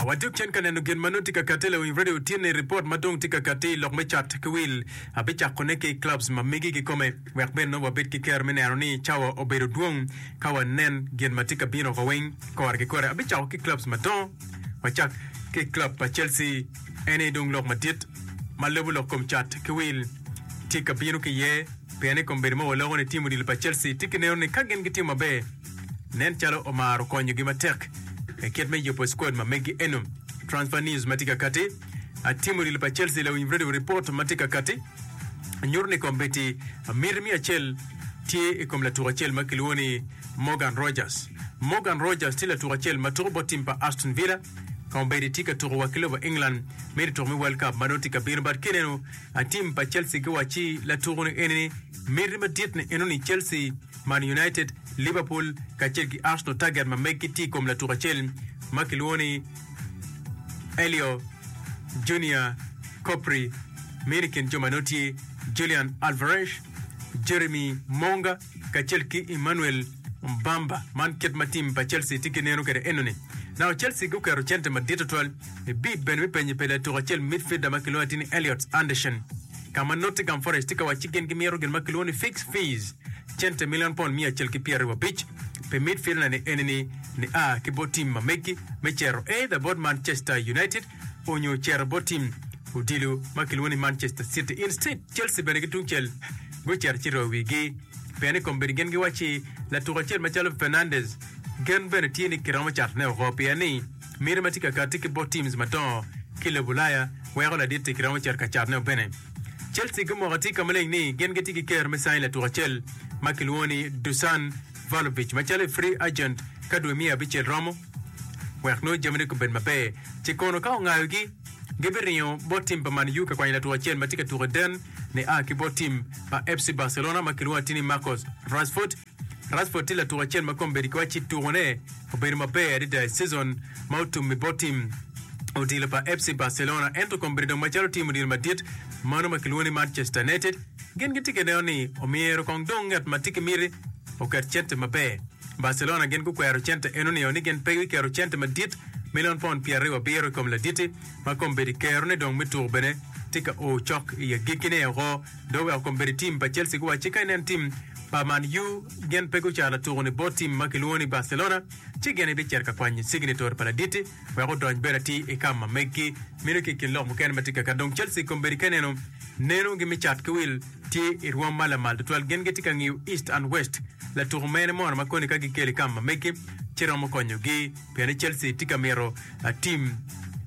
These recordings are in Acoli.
Awaco cen ka neno gin ma nongo tye ka katte lewiny radio tye ni ripot ma dong tye ka katte i lok me cat ki wil abicakone ki i clubs ma megi kikome wek bene nongo wabed ki ker me neno ni cawa obedo dwong ka wanen gin ma tye ka bino wa weng kore ki kore abicako ki clubs madongo wacak ki club pa Chelsea en aye dong lok madit ma lobo lok kom cat ki wil tye ka bino ki iye pien i kom bedo ma waloko ni tim odilo pa Chelsea tye ki neno ni ka gin gitimo maber nen calo omaro konyogi matek i kit me yubo skwad ma megi eno. Transfer News ma tye ka kati, Atim odilo pa Chelsea lawiny radio report ma tye ka kati nyuto ni kombeddi miti miya acel tye i kom latuk acel ma kilwongo ni Morgan Rogers. Morgan Rogers tye latuk acel ma tuko bot tim pa Aston Villa. Kombeddi tye ka tuko wa ki lobo England miti tuko me World Cup ma dong tye ka bino but kineno atim pa Chelsea giwacci latuko-ni eni miti madit ni enoni Chelsea Man United, Liverpool kacel ki Arsenal taget ma meggi tye i kom latuk acel ma kilwongo ni Elio Junior Copri. Meno i kin jo ma nongo tye Julian Alvarez, Jeremy Monga kacel ki Emmanuel Mbamba. Man kit ma tim pa Chelsea tye ki neno kwede enoni. Naka Chelsea guketo cente madit tutwal i bid bene me penye pa latuk acel midfielder ma kilwongo atir ni Elliot Anderson. ka ma Nottingham Forest tye ka wacci gin gimito gin ma kilwongo ni fixed fees, cente milion pond miya acel ki pyer aryo abic, pi midfielder-ni enini nia ki bot tim ma meggi me cito either bot Manchester United onyo cito bot tim odilo ma kilwongo ni Manchester City. Instead, Chelsea bene ki tungcel gucito ci royo wigi pien ni kombeddi gin giwacci latuku acel macalo Fernandes gen bene tye ni kiromo catone oko pien ni Miti ma tye ka katti ki bot teams madongo ki i lobo Ulaya weko laditti kiromo cito ka catone o bene. Chelsea gumoko atir ka maleng ni gin gitye ki ker me sain latuk acel ma kilwongo ni Dusan Vlahovic macalo i free agent ka dwe miya abicel romo wek nongo jamine gubed maber. Ce kono ka ongayogi, gibiringo bot tim pa Man U ka kwanyo latuk acel ma tye ka tuko i den ni a ki bot tim pa FC Barcelona ma kilwongo atir ni Marcus Rashford. Rashford tye latuk acel ma kombeddi ki wac ci tukone obedo maber adada i cizon ma otum i bot tim odilo pa FC Barcelona ento kombeddi dong macalo tim odilo madit mano ma kilwongo ni Manchester United gin gitye ka neno ni omyero kong dong ngat ma tye ki miti oket cente maber. Barcelona gin gukwero cente eno nio ni gin pe giketo cente madit milion paund pyeraryo abiro i kom laditti ma kombeddi kerone dong me tuko bene tye ka o cok i agikkine-o. Dong wek okom bedo i tim pa Chelsea guwacci ka inen tim pa Man U gin pe gucano tuko ni bot tim ma kilwongo ni Barcelona, ci gin ibicito ka kwanyo cignetor pa laditi wek odony bedo atir i kam ma meggi meno ki i kin lok mukene ma tye kaka. Dong Chelsea kom bedo ka ineno nenogi me cat ki wil tye i rwom ma lamal tutwal. Gin gitye ka ngiyo East and West, latuko mene mono ma koni ka gikelo i kam ma meggi ci romo konyogi pienni Chelsea tye ka mito tim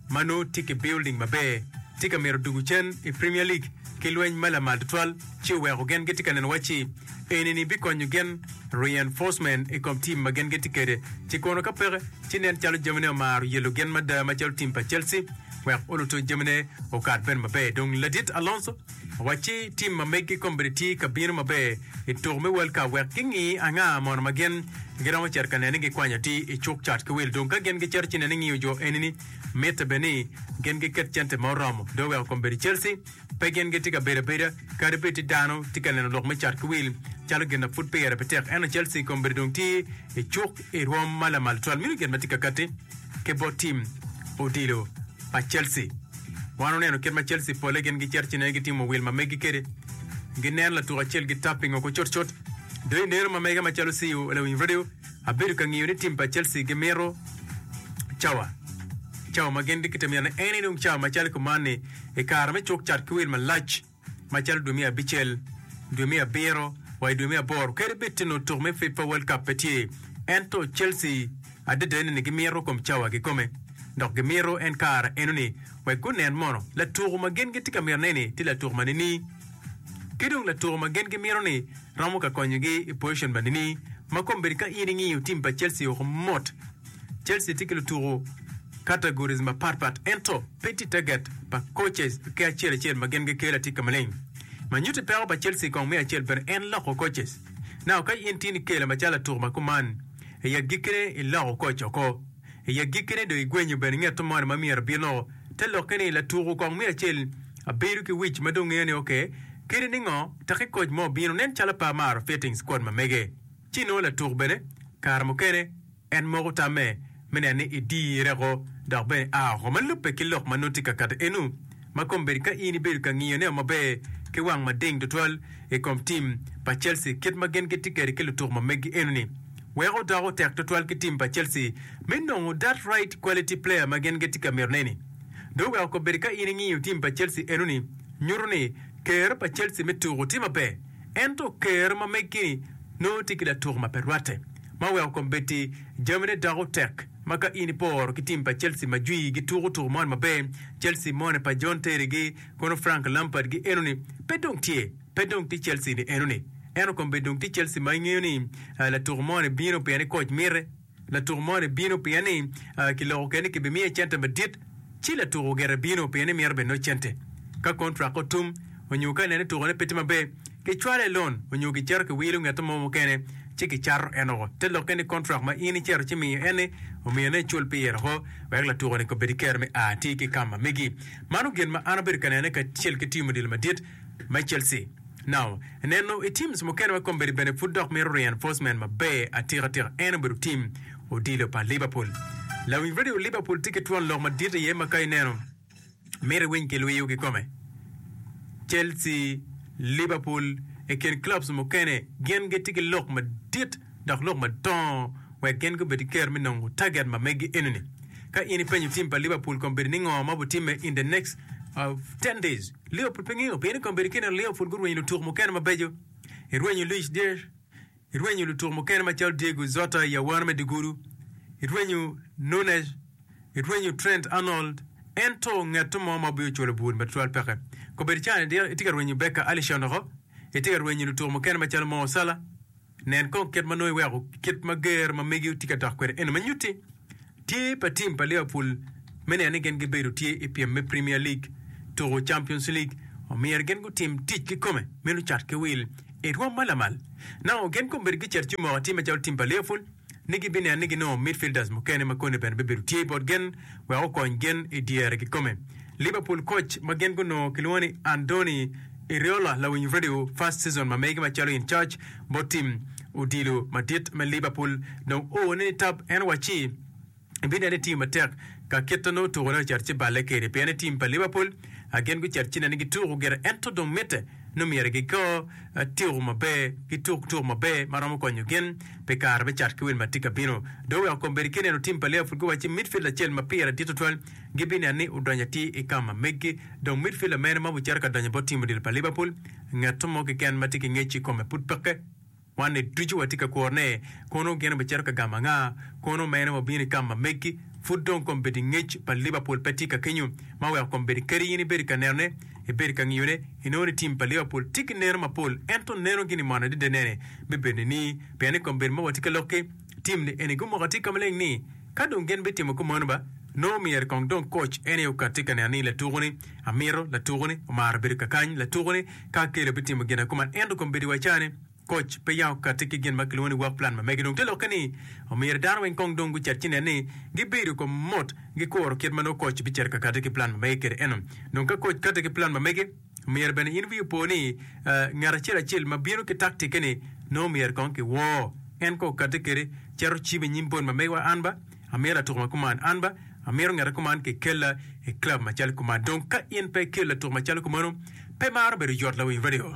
ma nongo tye ki building maber, tye ka mito dugu cen i Premier League. ki lweny ma lamal tutwal ci oweko gen gitye ka neno wacci enini bikonyo gen, reinforcement, i kom tim ma gen gitye kede ci kono ka peke ci nen calo jamine omaro yelo gen mada macalo tim pa Chelsea wek oluto jamine okat bene maber dong ladit Alonso owacci tim ma megi kombedi tye ka bino maber i tuko me World Cup wek gingi anga mono ma gen giromo cito ka nene gikwanyo atir i cuk cat ki wil dong ka gen gicito ci nene ngiyo jo enini Mitte bene ni gin giket cente ma oromo dong oweko kom bedo Chelsea. Pe gin gitye ka bedo abeda kadi bed ni dano tye ka neno lok me cat ki wil calo gin ma pud pire pe tek, ento Chelsea kom bedo dong tye i cuk i rwom ma lamal tutwal. Meno gin ma tye ka katti ki bot tim odilo pa Chelsea. Wan wuneno kit ma Chelsea polle gin gicito ci nen gitimo wil ma megi kwede, ginen latuk acel gitapingo ku cutcut. Dong ineno ma mege macalo CEO Lewin Radio, Abedo ka ngiyo ni tim pa Chelsea gimito cawa cawa ma gin gitye ka mito ni en enong cawa macalo kuman ni i kare me cuk cat ki wil malac macalo dwe me abicel, dwe me abiro wa i dwe me aboro kadi bed tye nongo tuk me FIFA World Cup pe tye. Ento Chelsea adada ni gimito kom cawa kikome dok gimito en kare enoni wek gunen mono latuku ma gin gitye ka mito ne ni tye latuku ma nini. Ki dong latuko ma gin gimito ni romo ka konyogi i pozicon ma nini ma kombeddi ka in ingiyo tim pa Chelsea woko mot. Chelsea tye ki lutuko categories mapat pat ento pe tye target pa coaches ki acel acel ma gin gikelo atika maleng. Ma nyutti peko pa Chelsea kong me acel bene en loko coaches. Now ka in tin ikela macalo latuko ma kuman, i agikkine iloko coach oko. I agikkine do igwenyo bene ngeto moni ma myero bino te lokke ni latuko kong me acel Abedo ki wic ma dong ngeyo ni oke. Kadi ningo, taki koc mo obino, nen calo pe amaro Fittings kwon ma mege. Ci nongo latuk bene, kare mukene en moko tamme me neno ni idirre oko dok bene aa oko ma lubbe ki lok ma nongo tye ka kato enu. Ma kombeddi ka in ibedo ka ngiyo neo maber ki wang mading tutwal i kom tim pa Chelsea kit ma gin gitye kwede ki lutuk ma megi enoni, weko doko tek tutwal ki tim pa Chelsea me nongo that right quality player ma gin gitye ka mito neni. Dong wek okobedi ka in ingiyo tim pa Chelsea enoni nyuto ni ker pa Chelsea me tuku tye maber ento ker ma megi-ni nongo tye ki latuku ma pe rwatte ma weko kombeddi jamine doko tek ma ka in iporo ki tim pa Chelsea ma jwi gituku tuku moni maber Chelsea moni pa John Terry gi kono Frank Lampard gi enoni pe dong tye pe dong tye Chelsea ni enoni ento kombeddi dong tye Chelsea ma ingeyo ni latuku moni bino pien ni koc mite Latuk moni bino pien ni kiloko kene ni kibimiye cente madit, ci latuk ogire bino pien ni mito bene nongo cente. Ka kontrak otum onyo ka ineno ni tukone pe tye maber, kicwalo i lon onyo kicito kiwilo ngete mo mukene ci kicato en woko. Te lokke ni kontrak ma in icito ci miyo en-ni omiyo ni icul pire woko wek latuko-ni kobed ki kero me a atir ki i kam ma megi. Mano gin ma an abedo ka nene kacel ki tiyo mudilo madit. me Chelsea. Now, neno i teams mukene ma kombeddi bene pud dok mito reinforcement maber atika tika en obedo team odilo pa Liverpool. Lawiny radio Liverpool tye ki twon lok madit iye ma ka ineno mito iwiny kilwiyo kikome. Chelsea, Liverpool i kin clubs mukene gin gitye ki lok madit dok lok madongo wek gin gubed ki kero me nongo target ma megi enini. Ka in ipenyo team pa Liverpool kombeddi ni ngo ma obitimme in the next uh, 10 days, Leo pud pe ngingo pien ni kong bedo kineno Leo pud gurwenyo lutuk mukene mabeco. Irwenyo Luis Diaz, irwenyo lutuk mukene macalo Diego Jota i awano me dyegudu, irwenyo Nunez, irwenyo Trent Arnold, ento ngeto mo ma obio cwalo bur matwal peke. Kong bedo cani dok itye ka rwenyo Becker Alisson oko, itye ka rwenyo lutuk mukene macalo Mo Salah, Nen kong kit ma nongo iweko kit ma ger ma megi otye ka dok kwede eno me nyutti. Tye pa tim pa Liverpool me neno ni gin gibedo tye i pyem me Premier League tuko Champions League. Omyero gin gutim tic kikome me lucat ki wil i rwom ma lamal. Nano gin kombedo gicito ci moko atim macalo tim pa Liverpool. ni gibineno ni ginongo midfielders mukene ma kone bene bibedo tye bot gin wek okony gin i dyere kikome. Liverpool coach ma gin gunongo kilwongo ni Andoni Iriola lawiny radio first season ma megi macalo in charge bot tim odilo madit me Liverpool dong oone ni tab en waci ibineno ni tye matek ka kit ma nongo tukone ocito ci balle kede pien ni tim pa Liverpool gin gucito ci neno ni gituko gire ento dong mitte nongo myero gigo tiko maber, gituk tuko maber ma romo konyo gin pi kare me cat ki wil ma tye ka bino. Dong oweko kombeddi ki neno tim pa Liverpool guwacci midfielder acel ma pire dit tutwal gibineno ni odonyo atir i ka ma meggi. Dong midfielder mene ma obicito ka donyo bot tim odilo pa Liverpool? Ngat mo keken ma tye ki ngec i kome pud peke. Wanni ducu watye ka kuro ne, Kono gin obicito ka gamo anga? Kono mene wabino i kam ma megi? Pud dong kombeddi ngec pa Liverpool pe tye ka kenyo ma weko kombeddi kadi in ibedi ka nenone, ibedi ka ngiyone, inongo ni tim pa Liverpool tye ki neno mapol ento nenogi ni mone adada nene me bedone ni pien ni kombeddi ma watye ka lokke. Tim ni eni gumoko atika maleng ni, Ka dong gin bitimo kumanu ba, nongo myero kong dong koc en aye okat tika neno ni latuku-ni amito, latuku-ni omaro bedo kakany, latuku-ni ka akelo bitimo gin akuman. Ento kom bedo wa ca ni, koc pe yam okatti ki gin ma kilwongo ni work plan ma mege. Dong te lokke ni, omyero dano weng kong dong gucat ci nen ni gibedo kom mot gikuro kit ma nongo koc bicito ka kati ki plan ma mege kede eno. Dong ka koc kati ki plan ma mege, Myero bene in wii opo ni ngat acel acel ma bino ki taktikke-ni nongo myero kong kiwor. En kong okatte kwede cito cim i nyim bon ma megiwa an ba amito latuk ma kuman, an ba amito ngete kuman kikella i club macalo kuman. Dong ka in pe ikelo latuk macalo kumano, pe maro bedo yot lawiny radio.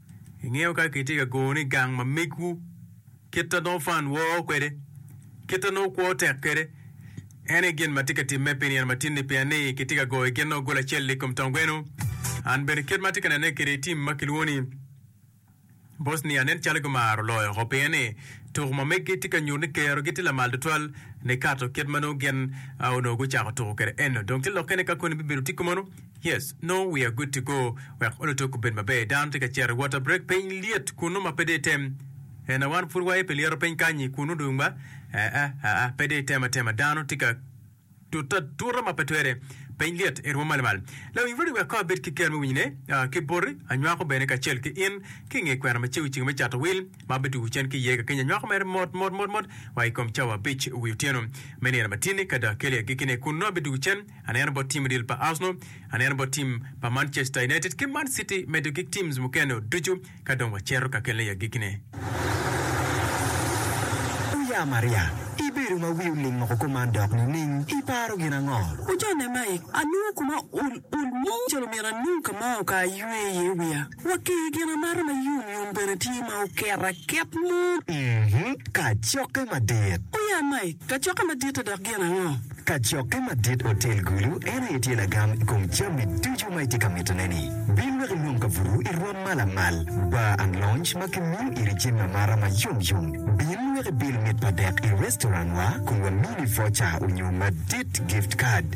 Ingeyo ka kitye ka gone i gang ma megwu, kit ma nongo fan woo kwede, kit ma nongo kwo tek kwede, en aye gin ma tye ka timme pi nino matin-ni, pien ni kitye ka goyo gin nongo goli acel-li i kom tong gweno. An bene kit ma atye ka nene kwede i tim ma kilwongo ni Bosnia, nen calo gimaro loyo oko pien ni tuko ma meggi tye ka nyuto ni kerogi tye lamal tutwal nikato kit ma nongo gin onongo gucako tuko kwede eno. Dong tye lokke ni ka koni bibedo tiko meno. Yes, nongo wiya gutti go wek olutuk obed maber. Dano tye ka cito wot abrek piny lyet kunnu ma pe dong item. En a wan pud waye pi lyeto piny kany-nyi kunnu dong ba? Aa, aa, pe dong item atema. Dano tye ka tute atuta ma pe twere. Piny lyet, irwom malmal. Lawiny Rudy wek kong abed ki ker me winyone, aa, ki boti, anywako bene kacel ki in, ki i nge kwena ma cego ceng me Cato Wil, ma abetugo cen ki iye kakenya. Anywako mere mot, mot, mot, mot, wa i kom cawa abic wi otyeno me nino matinni, ka dong akeli agikkine, kun nongo abetugo cen. Aneno bot tim odil pa Arsenal, aneno bot tim pa Manchester United ki Man City medo ki teams mukene o ducu ka dong wacero kakele i agikine. Wuya Maria, ibedo ma wi oling moko kuman dok nining? Iparo gin ango? Wujone Mike, anongo kuma ol ol mo calo myero anong ka ma okayo aywe iye wiya. Watti gin amata ma yom yom bene tye ma oket aket mo. Kacokke madit. O ya Mike, kacokke madit-ti dok gin ango? Kacokke madit otel gulu en aye tye lagam i kom jami ducu ma itye ka mitone-ni. Bin wek inong kabuto i rwom ma lamal, bar and lounge ma kimiyo iri jami amata ma yom yom. Bin wek ibil mit pa dek i restaurant-wa kun wamini voucher onyo madit, gift card.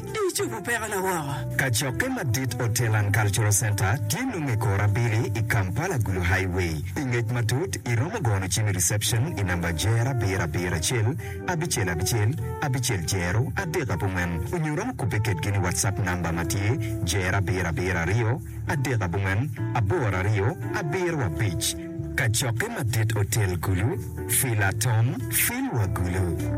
Di icobo pekona woko. Kacokke madit Hotel and Cultural Centre tye nongo i kor abili i Kampala Gulu Highway. Pi ngec matut, iromo gono cim i reception i namba Jer abiro abiro acel abicel abicel abicel Jero adek abongwen onyo iromo kubbe kedgi ni WhatsApp namba ma tye Jer abiro abiro aryo adek abongwen aboro aryo abiro abic. Kacokke madit Hotel Gulu, Fila Tom, Filwa Gulu.